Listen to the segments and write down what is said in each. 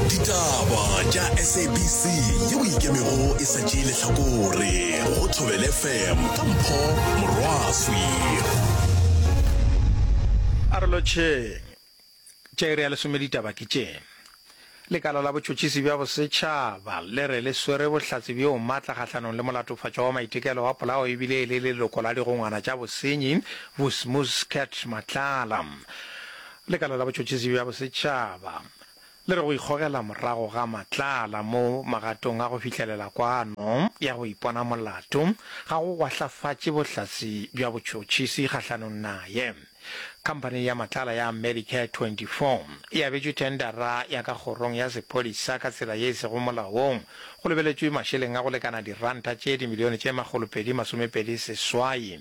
ditaba tša sabc yeo e ikemego e sa tšee lehlakore go thobele fm ka mpho morwaswi a re lotšheng tša iri ya lesome ditaba ke tše lekala la botšhotšhisi bja bosetšhaba le re le swere bohlatse bjo matla kgahlanong le molatofatšwa wa maitekelo wa polao ebile e le leloko la digongwana tša bosenyi vusmus cat matlala Lekala la Botšhotšhisi bja Bosetšhaba le re go ikgogela morago ga matlala mo magatong a go fihlelela kwano ya go ipona molato ga go gwahlafatše bohlatse bja botšhotšhisi kgahlanong naye. Khamphani ya matlala ya Medicare 24 e abetšwe thendara ya ka kgorong ya sephodisa ka tsela ye e sego molaong, go lebeletšwe mašeleng a go lekana diranta tše dimilione tše makgolopedi masomepedi seswai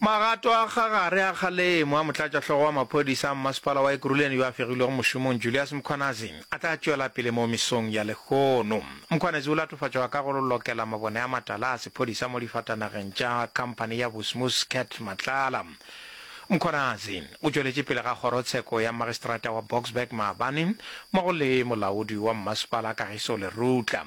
Magato a ga gare a kgalemo a motlatšahlogo wa maphodisa a mmasepala wa Ekurhuleni yo a fegilwego mošomong Julius Mkhwanazi a tla tšwela pele mo mesong ya lehono. Mkhwanazi o latofatšwa ka go lokela mabone a matala a sephodisa mo difatanageng tša khamphani ya Busmus Cat Matlala. Mkhwanazi o tšweletše pele ga kgorotsheko ya mmagistrata wa Boksburg maabane mmogo le molaodi wa mmasepala Kagiso Lerutla.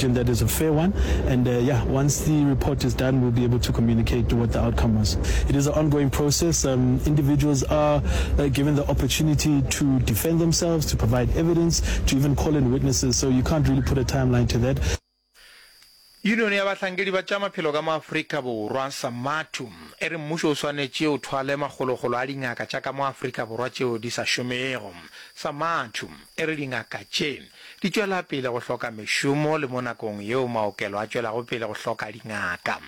Question that is a fair one and uh, yeah, once the report is done, we'll be able to communicate what the outcome was. It is an ongoing process. Um, individuals are uh, given the opportunity to defend themselves, to provide evidence, to even call in witnesses. So you can't really put a timeline to that. Union ya bahlankedi ba tša maphelo ka mo Afrika Borwa, SAMATU, e re mmušo o swanetše o thwale makgolokgolo a dingaka tša ka mo Afrika Borwa tšeo di sa šomego. SAMATU. E re dingaka tše di tšwela pele go hloka mešomo le mo nakong yeo maokelo a tšwelago pele go hloka dingaka,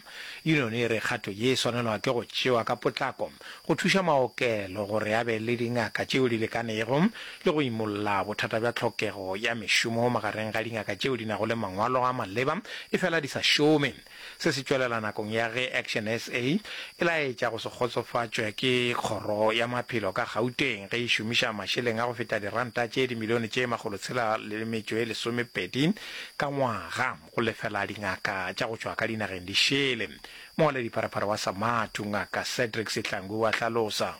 yuniono e re kgato ye e swanelwa ke go tšewa ka potlako go thuša maokelo gore a be le dingaka tšeo di lekanego le go imolla bothata bja tlhokego ya mešomo magareng ga dingaka tšeo di nago le mangwalo a maleba efela di sa šome. Se se tšwelela nakong ya ge Action SA e laetša go se kgotsofatšwe ke Kgoro ya Maphelo ka Gauteng ge e šomiša mašeleng a go feta diranta tše dimilione tše makgolo tshela le metšo e lesomepedi ka ngwaga go lefela dingaka tša go tšwa ka dinageng di šele. Mongwaladipharapara wa Samathu, Ngaka Cedric Sihlangu o a hlalosa.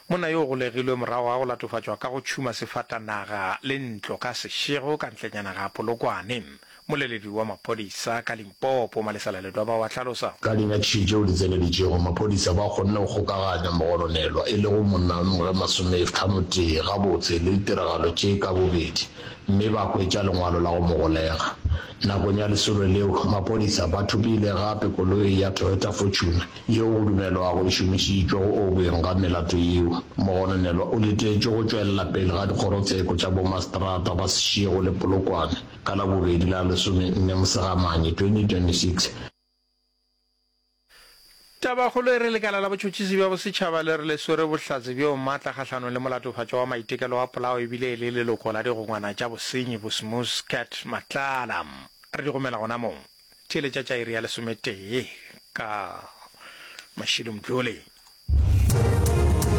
Monna yo o golegilwe morago ga go latofatšwa ka go tšhuma sefatanaga le ntlo ka sešego ka ntlenyana ga Polokwane. Mmoleledi wa maphodisa ka Limpopo, Malesela Ledwaba wa hlalosa. Ka dinyakišišo tšeo di tseneletšego, maphodisa ba kgonne go kgokaganya mogononelwa e lego monna wa mengwaga e masomethlanotee gabotse le ditiragalo tše ka bobedi mme ba hwetša lengwalo la go mo golega. Nakong ya lesolo leo, maphodisa ba thopile gape koloi ya Toyota Fortuner yeo go dumelwago e šomišitšwe go objeng ga melato yeo, mogononelwa o letetšwe go tšwelela pele ga dikgorotseko tša bomaseterata ba Seshego le Polokwane ka Labobedi la lesomenne Mosegamane 2026. Tabakgolo e re lekala la botšhotšhisi bja bosetšhaba le re le swere bohlatse bjo matla kgahlanong le molatofatšwa wa maitekelo wa polao e bile e le leloko la digongwana tša bosenyi Bosmus Cat Matlala. Re di romela gonamong. Theeletša tša iri ya lesometee ka mašilo mtlole.